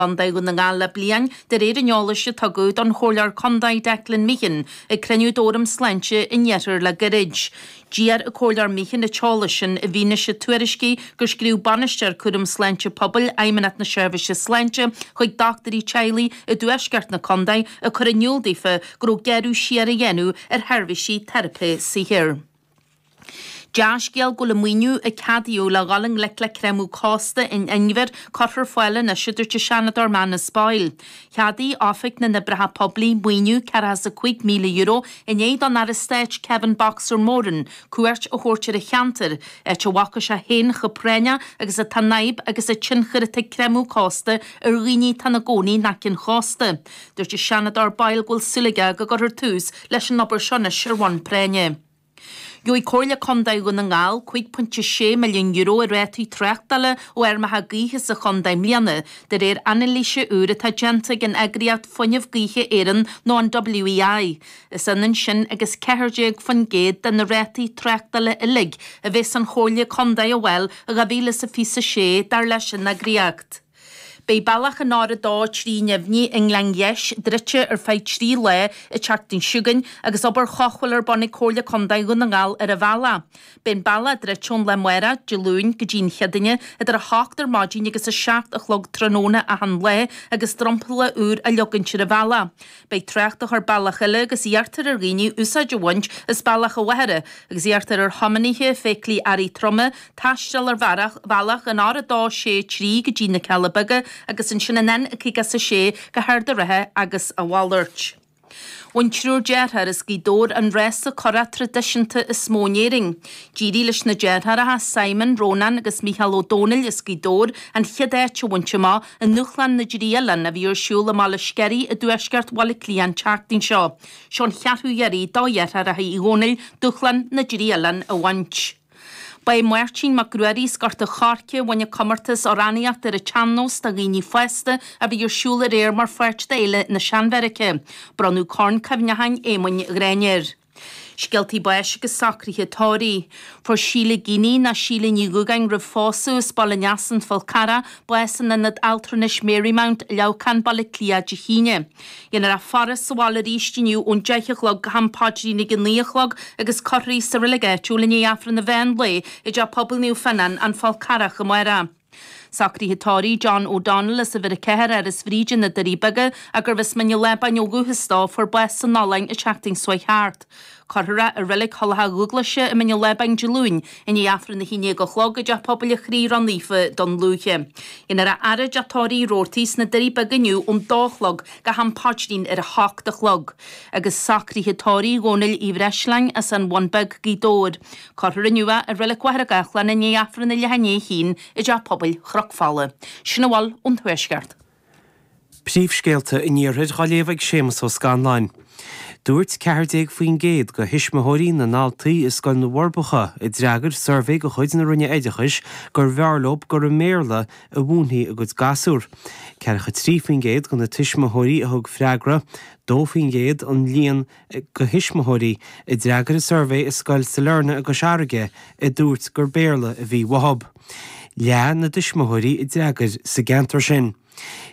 gContae Dhún na nGall le bliain, de réir an eolais a tugadh don Chomhairleoir Contae Declan Meehan ag cruinniú d'Fhóram Sláinte an Iarthair le gairid. D'iarr an Comhairleoir Meehan an t-eolas sin i bhfianaise tuairiscí gur scríobh Bainisteoir Cúram Sláinte Pobail Fheidhmeannacht na Seirbhíse Sláinte chuig dochtúirí teaghlaigh i dtuaisceart na contae ag cur in iúl daofa go raibh gearradh siar á dhéanamh ar sheirbhísí teiripe saothair. Dea-scéal go bhfuil an maoiniú a ceadaíodh le dhul i ngleic le creimeadh cósta in Inbhir curtha ar fáil anois, a dúirt an Seanadóir Manus Boyle. Cheadaigh Oifig na nOibreacha Poiblí maoiniú €405,000 i ndiaidh don Aire Stáit Kevin 'Boxer' Moran cuairt a thabhairt ar an cheantar, áit a bhfaca sé féin chomh práinneach agus atá an fhadhb agus an tionchar atá ag creimeadh cósta ar dhaoine atá ina gcónaí in aice an chósta. Dúirt an Seanadóir Boyle go bhfuil súil aige go gcuirfear tús leis an obair seo anois ar bhonn práinne. Gheobhaidh Comhairle Contae Dhún na nGall €5.6 milliún i rátaí tráchtála ó fheirmeacha gaoithe sa chontae i mbliana, de réir anailíse úir atá déanta ag an eagraíocht Fuinneamh Gaoithe Éireann nó an WEI. Is ionann sin agus 14% de na rátaí tráchtála uilig a bheas an Chomhairle Contae á bhfáil i 2026, dar leis an eagraíocht. Beidh bealach an R230 i nGleann Gheis druidte ar feadh trí lá an tseachtain seo chugainn agus obair chothabhála ar bun ag Comhairle Contae Dhún na nGall ar an bhealach. Beidh an bealach druidte ón lá amárach, Dé Luain, go dtí an Chéadaoine idir 8 ar maidin agus 7 a chlog tráthnóna achan lá agus dromchla úr á leogaint ar an bhealach. Beidh trácht á chur bealach eile agus iarrtar ar dhaoine úsáid a bhaint as bealach an Mhachaire agus iarrtar ar thiománaithe feithiclí earraí troma taisteal ar bhealach an R263 go dtí na Cealla Beaga agus ansin an N56 go hArd an Rátha agus a mhalairt. Bhain triúr dearthár as Gaoth Dobhair an rása curach tradisiúnta is mó in Éirinn. D'éirigh leis na deartháireacha Simon, Rónán agus Micheál Ó Domhnaill as Gaoth Dobhair an chéad áit a bhaint amach, I nDúshlán na dTrí Oileán, a bhí ar siúl i mBaile Sceirí i dtuaisceart Bhaile Átha Cliath an tseachtain seo, seo an cheathrú iarraidh do dheartháireacha Uí Dhónaill dúshlán na dTrí Oileán a bhaint. Ba é Máirtín Mac Ruairí as Gort an Choirce a bhain an comórtas 'Amhránaíocht ar an tSean-nós do Dhaoine Fásta' a bhí ar siúl aréir mar pháirt d'Fhéile na Seanbheairice. Bronnadh Corn Cuimhneacháin Éamoinn Ghráinne air. Scéaltaí báis agus socruithe tórraimh. Fuair Síle Geaney, nó Síle Ní Dhugáin roimh phósadh, as Baile an Easa, An Fál Carrach, bás in Ionad Altranais Marymount, Leamhcán, Baile Átha Cliath, Dé hAoine. Dhéanfar í a fhaire sa bhaile arís inniu ón deich a chlog go ham paidrín ag a naoi a chlog agus cuirfear í sa reilig áitiúil i ndiaidh Aifreann an Mheán Lae i dTeach Pobail Naomh Fionán, An Fál Carrach, amárach. Socruithe tórraimh John O'Donnell as uimhir a ceathair, Áras Bhríde, Na Doirí Beaga, agus arbh as Mín an Lábáin ó dhúchas dó, fuair bás san Ollainn an tseachtain seo thart. Cuirfear é i reilig Thulacha Dúghlaise i Mín an Lábáin Dé Luain i ndiaidh aifreann a haon déag a chlog i dTeach Pobail an Chroí Ró-Naofa, Dún Lúiche. Déanfar a fhaire i dTeach Tórraimh Roarty sna Doirí Beaga inniu ón dó a chlog go ham paidrín ar a hocht a chlog agus socruithe tórraimh Dhomhnaill Uí Bhreisleáin as an Bhun Bheag, Gaoth Dobhair. Cuirfear é inniu i Reilig Mhachaire Gathlán i ndiaidh Aifreann a leath i ndiaidh a haon i dTeach Pobail Chnoc Fola. Sin a bhfuil ón Tuaisceart. Príomhscéalta an Iarthair dá léamh ag Séamas Ó Scanláin. Dúirt ceathair déag faoin gcéad de thuismitheoirí na ndaltaí i Scoil na bhForbacha a d'fhreagair suirbhé de chuid na Roinne Oideachais gurbh fhearr leo gur i mBéarla a mhúinfí a gcuid gasúr. Ceathracha trí faoin gcéad de na tuismitheoirí a thug freagra, dó faoin gcéad an líon go thuismitheoirí a d'fhreagair an suirbhé i Scoil Sailearna i gCois Fharraige a dúirt gur Béarla a bhí uathu. Leath na dtuismitheoirí a d'fhreagair sa gceantar sin.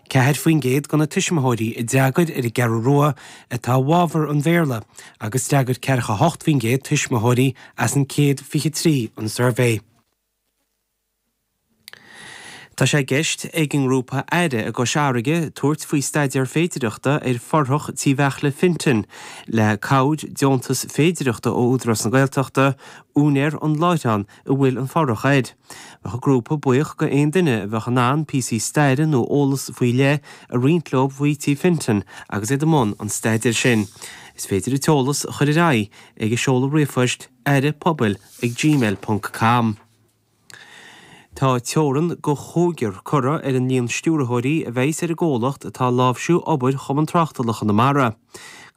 Ceathair faoin gcéad de na tuismitheoirí a d'fhreagair ar an gCeathrú Rua atá i bhfabhar an Bhéarla agus d'fhreagair ceathracha hocht faoin gcéad tuismitheoirí as an 123 an suirbhé. Tá sé i gceist ag an ngrúpa aire i gCois Fharraige tabhairt faoi staidéar féidireachta ar fhothrach Tí Bheairtle Fintan le cabhair deontas féidireachta ó Údarás na Gaeltachta, úinéir an láithreáin a bhfuil an fothrach air. Bheadh an grúpa buíoch go aon duine a bheadh in ann píosaí staire nó eolas faoi leith a roinnt leo faoi Tí Fintan agus iad i mbun an staidéir sin. Is féidir an t-eolas a chur ar aghaidh ag an seoladh ríomhphoist, aire-pobail@gmail.com. Tá teorainn go chúigear curtha ar an líon stiúrthóirí a bheas ar an gcomhlacht atá ag láimhsiú obair Chumann Tráchtála Chonamara.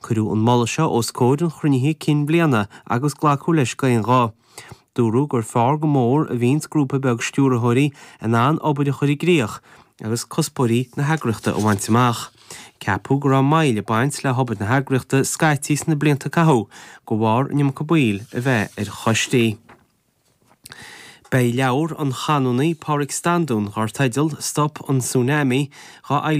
Cuireadh an moladh seo os comhair an chruinnithe cinn bliana agus glacadh leis d'aon ghuth. Dúradh gur fearr go mór a bhíonns grúpa beag stiúrthóirí in ann obair a chur i gcríoch, agus cuspóirí na heagraíochta a bhaint amach. Ceapadh go raibh moill ag baint le hobair na heagraíochta scaití sna blianta a caitheadh de bharr an iomarca baill a bheith ar choistí. Beidh leabhar an Chanónaigh Pádraig Standún dar teideal 'Stop an Tsunami' dhá fhoilsiú.